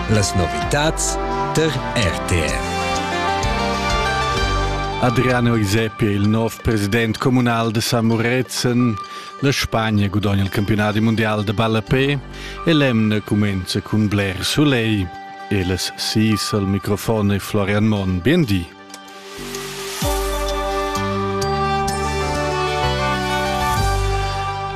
Las novitads tar RTR. Adriano Isepi è il nov president communal de San Muretzen. La Spagna gudogna il campionat mondial de ballapé e l'emna cumenza cun bler soleil. E las sis al microfon è Florian Monn. Bien di.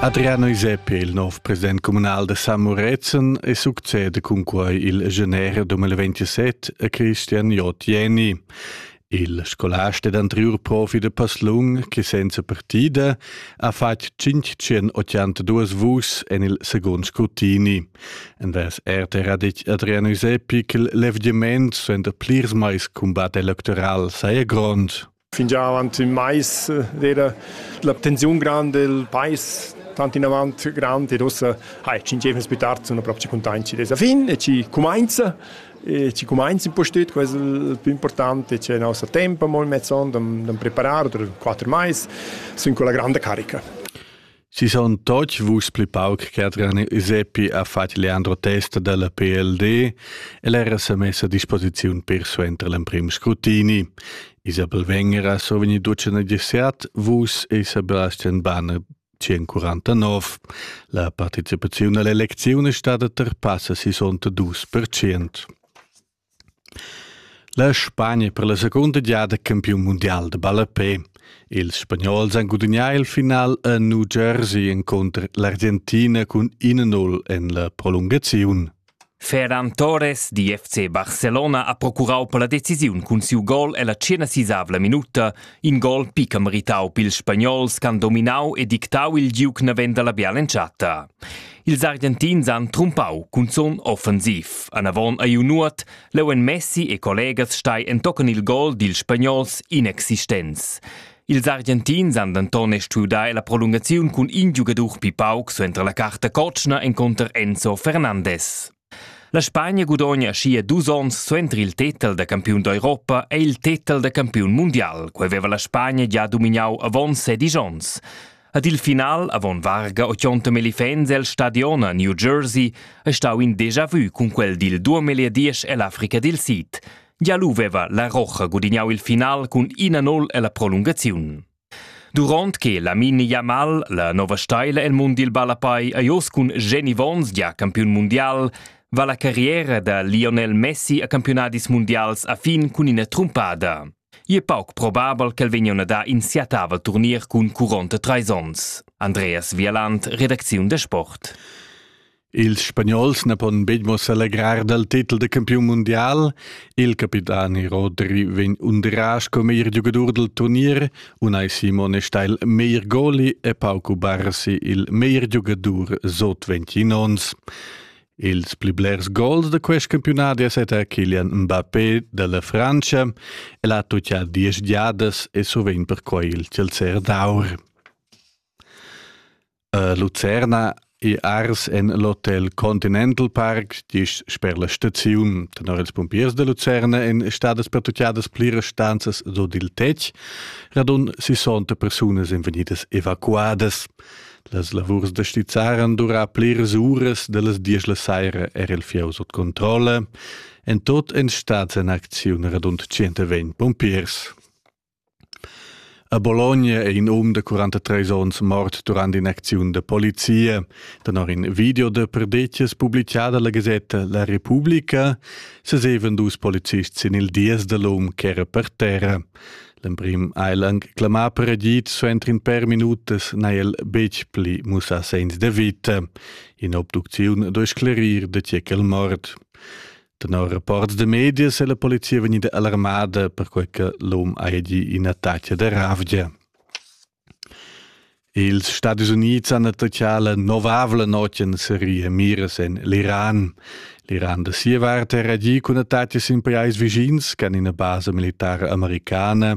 Adriano Iseppi, il nov president communal da San Murezzan, e succede cun quai il genere 2027 a Christian J. Jenny, il scolast ed anterior profi da Passlung che senza partida ha fatg 582 vus en il second scrutini. En das RTR ha detg Adrian Usepi che l'evdiment suenter plirs mais cumbat electoral saja grond. Fingià avant ün mais era la tensiun grande del pais tant in avant grand e rossa hai ci ingeven più tardi una propria contagna dessa fin e ci comincia e ci comincia un po' stüt questo il più importante c'è il nostro tempo molto mezzon da preparare per quattro mais sind con la grande carica Si son toch vus pli pauc che Adrian Iseppi ha fatg Leandro Testa dalla PLD e l'era sa messa a disposiziun per suenter l'emprim scrutini. Isabel Wenger ha survegni ducen gesiat, vus e Sebastian Banner 149. La participazione all'elezione è stata terpassa 62%. La Spagna per la secunda giada campiun mundial da ballapè. Ils spagnols han gudagnà il final a New Jersey encunter l'Argentina cun 1-0 en la prolungaziun. Ferran Torres di FC Barcelona ha procurau per la decisiun cun siu gol ella tschena sisavla minuta In gol picca meritau pils spagnols ch'han dominau e dictau il giug naven dalla bial'entschatta. Ils Argentins han trumpau cunzun offensiv. Anavon ei Nuot, leu en Messi e collegas stai entochen il gol dils spagnols inexistents. Ils Argentins han denton stuiu dar la prolungaziun cun in giugadur pi pauc suenter la carta cotschna encunter Enzo Fernandes. La Spagna gudogna schia dus onns suenter il tetel da campiun d'Europa è il tetel da campiun mundial. Quei veva la Spagna gia domignau avon sedisch onns. Ad il final, avon varga 80 elefants el stadion a New Jersey, è stau in déjà vu cun quel dil duemila diesch ell'Africa dil Sid. Gia lu veva la Rocha gudignau il final cun 1-0 ella prolungaziun. Duront che Lamine Yamal, la nova steila el mund dil ballapai, ei oz cun Jenny Vons gia campiun mundial, va la carriera da Lionel Messi a campiunadis mundials a fin cun ina trumpada. Ei è pauc probabel ch'el vegnion a dar in siatava turnier cun curonta treis onns. Andreas Wieland, redacziun da sport. Ils Spagnols na pon betg mo selegrar dal titel da campiun mundial. Il capitani Rodri vegn undirà sco meglier giugadur dal turnier. Unai Simone sta il meglier goli e Pauco Barsi il meglier giugadur sot 20 ons. Ils pli blers gols da quest campiunat è stata Kilian Mbappé dalla Francia e l'ha tuttà diesch giadas e sovint perquai il Chelsea d'aur. A Lucerna è ars en l'hotel Continental Park, dis sper la staziun. Tenor ils pumpiers da Lucerna èn stadas pertutgadas pliras stanzas sut il tetg, radund 60 persunas èn vegnidas evacuadas. Las lavurs da stizzar han durà pliras uras da las diesch la saira er il fieu sut controlla. En tot èn stads en acziun radund 120 pumpiers. A Bologna è in um da 43 onns mort durant in'acziun da polizia. Tenor in video da perdetgas publicada la gasetta La Repubblica sesevan dus policists sin il dies da l'um ch'era per terra. L'emprim ha el anc clamà per agid, suenter in per minutas n'ha el betg pli mussà segns da vita. In'obducziun duai sclerir da tge ch'el mort. Tenor rapports de medias è la polizia vegnida alarmada perquei che l'um hagi ina taccia de ravgia. Ils Stati Unids han attacchà la novavla notg en seria miras en l'Iran. L'Iran da sia vart era agì cun attacchi sin pajais vischins che ina basa militara americana.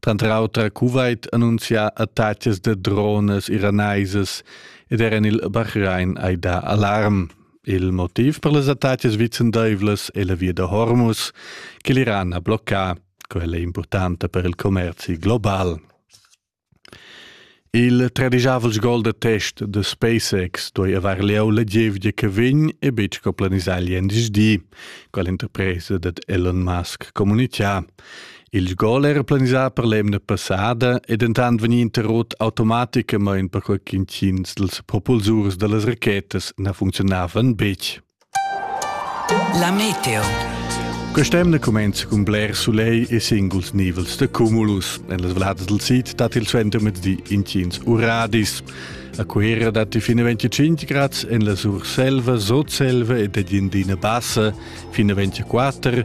Tranter auter Kuwait annunzia attacchis de drones iranaisas ed era il Bahrain hai dà alarm. Il motiv per las attacas vicendaivlas è la via da Hormuz che l'Iran ha bloccà. Quella è importanta per il commerzi global. Il tradigiavel gol da test da SpaceX duai avair lieu la gievgia che vegn e betg co planisà lien di. Quell'interpresa dat Elon Musk communitgà. Il gol era planisà per l'emna passada e dentant vegnì interrot automaticamain perquai ch'intgins dals propulsurs da las rachetas na funcziunavan betg. La meteo. Quest'emna cumenza cun bler sulegl e singuls nivels da cumulus. En las valladas dal sid dat il suentermezdi intgins uradis. A Cuera datti fin a 25 grads en la Surselva, Sotselva ed ad Indina Bassa fin a 24,